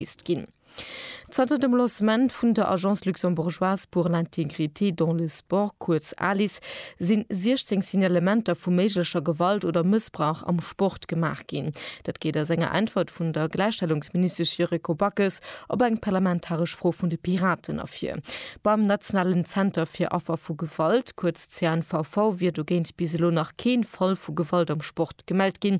List ginn. Zanter dem Lancement vun der Agence luxembourgeoise pour l'intégrité dans le sport, kuerz ALIS, si 16 Signalementer vu méiglecher Gewalt oder Mëssbrauch am Sport gemaach ginn. Dat geet aus enger Äntwert vun der Gläichstellungsministesch Yuriko Backes op eng parlamentaresch Fro vun de Piraten ervir. Beim nationalen Zenter fir Affer vu Gewalt, kuerz CNVV, wier dogéint bis elo nach kee Fall vu Gewalt am Sport gemellt ginn.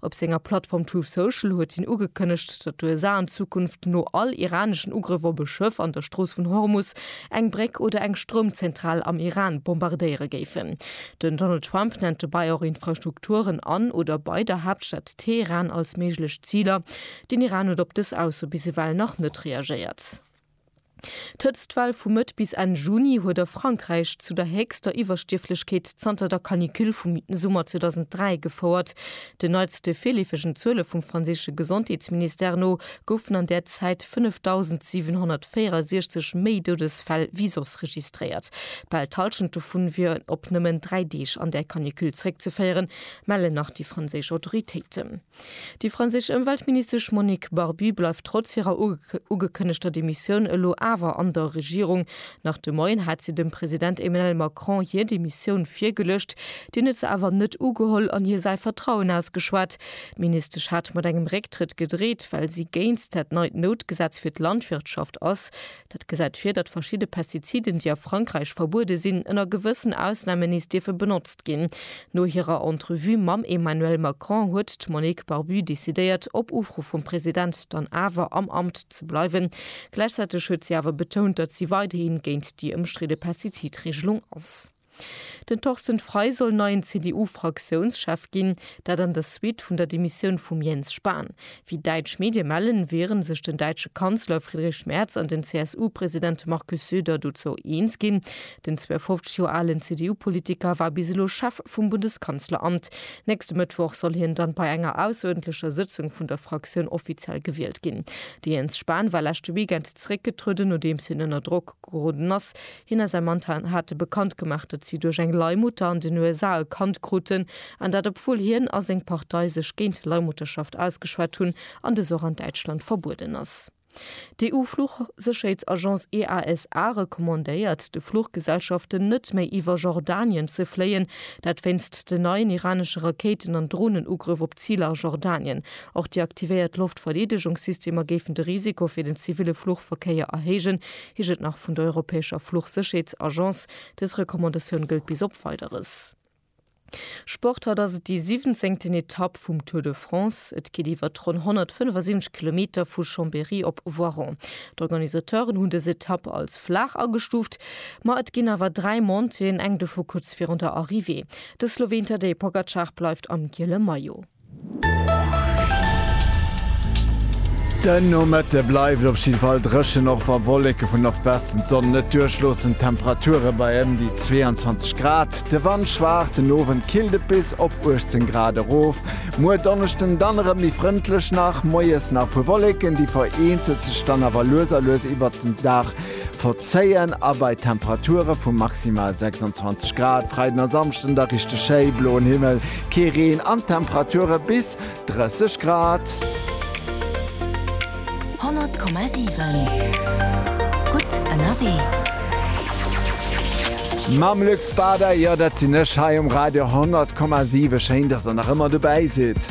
Op senger Plattform Truth Social huet hien ugekënnegt, datt d'USA an Zukunft no all iraneschen Ugrëff op e Schëff an der Strooss vun Hormus eng Bréck oder eng Stroumzentral am Iran bombardéiere géifen. Den Donald Trump nennt dobäi och Infrastrukturen an oder bei der Haaptstad Teheran als méiglech Ziler. Den Iran huet op dës Ausso bis ewell nach net reagéiert. D'Hëtztwell vu Mëtt bis Enn Juni huet a Frankräich zu der héchster Iwwerstierflechkeet zanter der Canicule vum Summer 2003 gefouert. Den neitste virleefegen Zuele vum franséische Gesondheetsministère no goufen an där Zäit 5.764 méi Doudesfäll wéi soss registréiert. Bal d'Hallschent dovun wier op nëmmen dräi Deeg an där Canicule zeréckzeféieren, mellen nach déi franséisch Autoritéiten. Déi franséisch Ëmweltministesch Monique Barbu bleift trotz hirer ugekënnegter Demissioun elo awer an der Regierung. Nach de Moien hat si dem President Emmanuel Macron hir Demissioun virgeluecht. Deen huet se awer net ugeholl an hir säi Vertrauen ausgeschwat. D'Ministesch hat mat engem Récktrëtt gedreet, well si géint dat neit Noutgesetz fir d'Landwirtschaft ass. Dat gesäit vir, datt verschidde Pestiziden, déi a Frankräich verbuede sinn, ënner gewëssen Ausnamen nees dierfe benotzt ginn. No hirer Entrevue mam Emmanuel Macron huet d'Monique Barbu decidéiert, op Ufro vum President dann awer am Amt ze bleiwen. Gläichzäiteg huet si awer betount, datt si weiderhi géint déi ëmstridde Pestizidreegelung ass. Den Torsten Frei soll neien CDU-Fraktiounschef ginn, dat an der Suite vun der Demissioun vum Jens Spahn. Wéi däitsch Medie mellen, wiere sech den däitsche Kanzler Friedrich Merz an den CSU-President Markus Söder dozou eens ginn. Den 52 Joer alen CDU-Politiker war bis elo Chef vum Bundeskanzleramt. Nächste Mëttwoch soll hien dann bei enger ausseruerdentlecher Sëtzung vun der Fraktioun offiziell gewielt ginn. De Jens Spahn war leschte Weekend zeréckgetrueden, nodeems hien ënner Drock geroden ass, Hien a säi Mann hate bekannt gemaach, datt si duerch eng Leihmutter an den USA e Kand kruten, an dat obwuel hien a seng Partei sech géint Leihmutterschaft ausgeschwat hunn an dës och an Däitschland verbueden ass. D'EU-Fluchsécherheetsagence EASA recommandéiert de Fluchgesellschaften net méi iwwer Jordanien ze fléien, dat wéinst den neien iranesche Rakéiten an Dronenugrëff op Ziler a Jordanien. Och déi aktivéiert Loftverdeedegungssystemer géifen de Risiko fir den ziville Fluchverkéier erhéijen, Hie jëtt nach vun der europäescher Fluchsécherheetsagence. Dës Recommandatioun gëllt bis op Weideres. Sport, Haut ass et déi siwwenzéngten Etapp vum Tour de France. Et geet iwwert ronn 175 Kilometer vu Chambéry op Voiron. D'Organisateuren hunn dës Etapp als flaach agestuuft, ma et ginn awer dräi Montéeën, eng dovu kuerz virun der Arrivée. De Sloween Tadej Pogacar bleift am giele Maillot. Den Nomëtte bleift op jidde Fall dréchen, och wa Wolleke vun Nordwesten d'Sonn net duerchloossen. D'Temperature bei ëm déi 22 Grad, de Wand schwaach. Den Owend killt et bis op 18 Grad erof. Muer Donneschden dann erëm méi frëndlech, nach moies nach puer Wolleken, déi vereenzelt sech dann awer lues a lues iwwert den Dag Verzéien a bei Temperature vu maximal 26 Grad Freiden a Samschden da richteg schéi, bloen Himmel, kee Reen an Temperature bis 30 Grad. 100,7 gutt ënnerwee. Mam Luc Bader, jo dat sinn ech hei um Radio 100,7, schéin dass der nach ëmmer dobäi sidd.